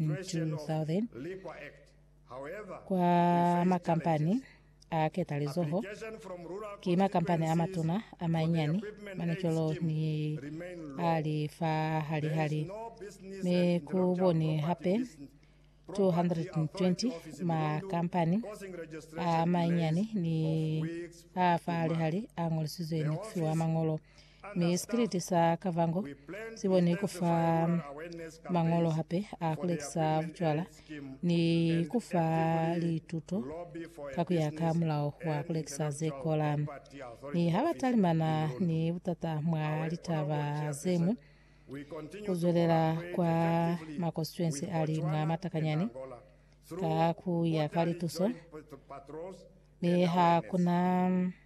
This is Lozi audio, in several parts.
2000 kwa makampani a ketalizoho ki makampani a matuna a mainyani mane cwalo ni a li fa halihali mi ku boni hape 220 makampani a mainyani ni a fa halihali a ṅolisizwe ni ku fiwa maṅolo Mi sikiliti sa Kavango si boni ku fa mañolo hape a ku lekisa bucwala ni ku fa lituto ka ku ya ka mulao wa ku lekisa ze kola. Mi ha ba talimana ni butata mwa litaba ze ñwi, ku zwelela kwa makosituensi a li mwa matakanyani ka ku ya ka lituso, mi ha ku na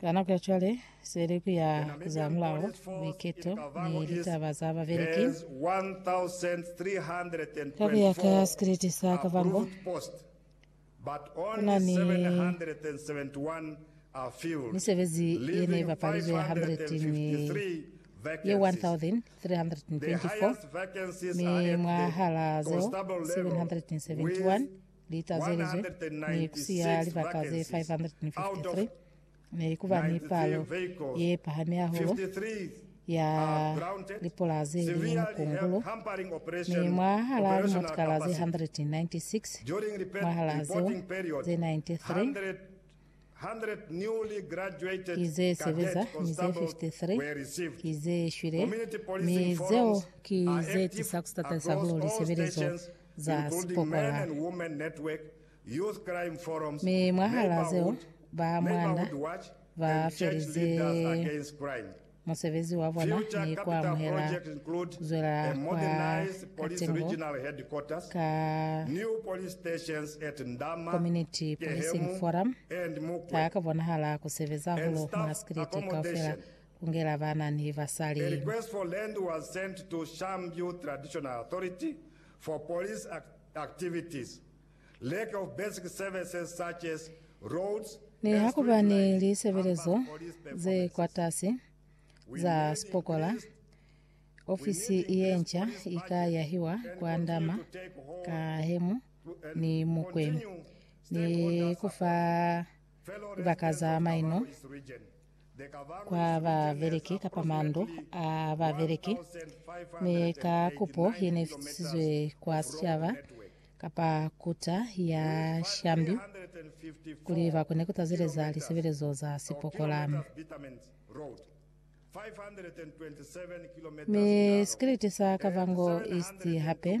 Ka nako ya cwale, seleku ya zamulaho, buiketo, ni litaba za babeleki, ka ku ya ka sikriti sa Kavango, ku na ni misebezi ye ne bapalizwe ya 100 mi ye 1,324, mi mwahal'a zeo 771 li tazelizwe ni ku siya libaka ze 553 ne li kuba ni palo ye pahami hahulu ya lipolasi li mukungulo, mi mwahal'a limotikala ze 196 mwahal'a zeo, ze 93 ki ze sebeza, mi ze 53 ki ze shwile, mi zeo ki ze tisa ku sitateli sa ku luli sebelezo za sipokola. Mi mwahal'a zeo, ba mwanda ba felize musebezi wa bona ni ku amuhela ku zwela kwa ka tengo ka Community Policing Forum ha ka bonahala ku sebeza hahulu mwa sikiliti kaufela. kungela bana ni basali. Request for land was sent to Shanview Traditional Authority for police activities, lack of basic services such as roads and street lights, hamper police personnel. Nihakuba ni lisebelezo zekwatas'i za sipokola, ofisi yenca ika yahiwa kwa Ndama, Kahemu ni Mukwe ni kufa libaka za maino. kwa babeleki kapa mandu a babeleki, mi ka kupo yenefisizwe kwa sicaba kapa kuta ya shambi kuli bakone kutazeleza lisebelezo za sipokola. Mi sikiliti sa Kavango East hape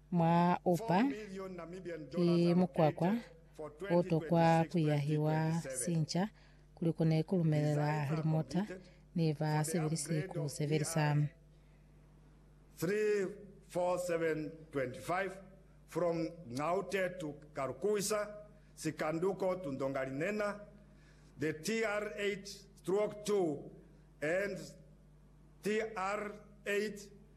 Mwa upa ki mukwakwa o tokwa ku yahiwa sinca kuli kone ku lumelela limota ni ba sebelisi ku sebelisa. 34725 from Ngaute to Karukuwisa Sikanduko to Ndongalinena the TR8 stroke 2 and TR8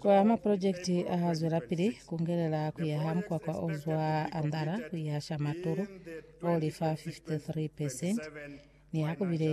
Kwa mapolojekiti a ha zwelapili ku ngelela ku yaha mukwakwa o zwa Andara ku ya Shamatulu o li fa 53 percent, ni ha ku bile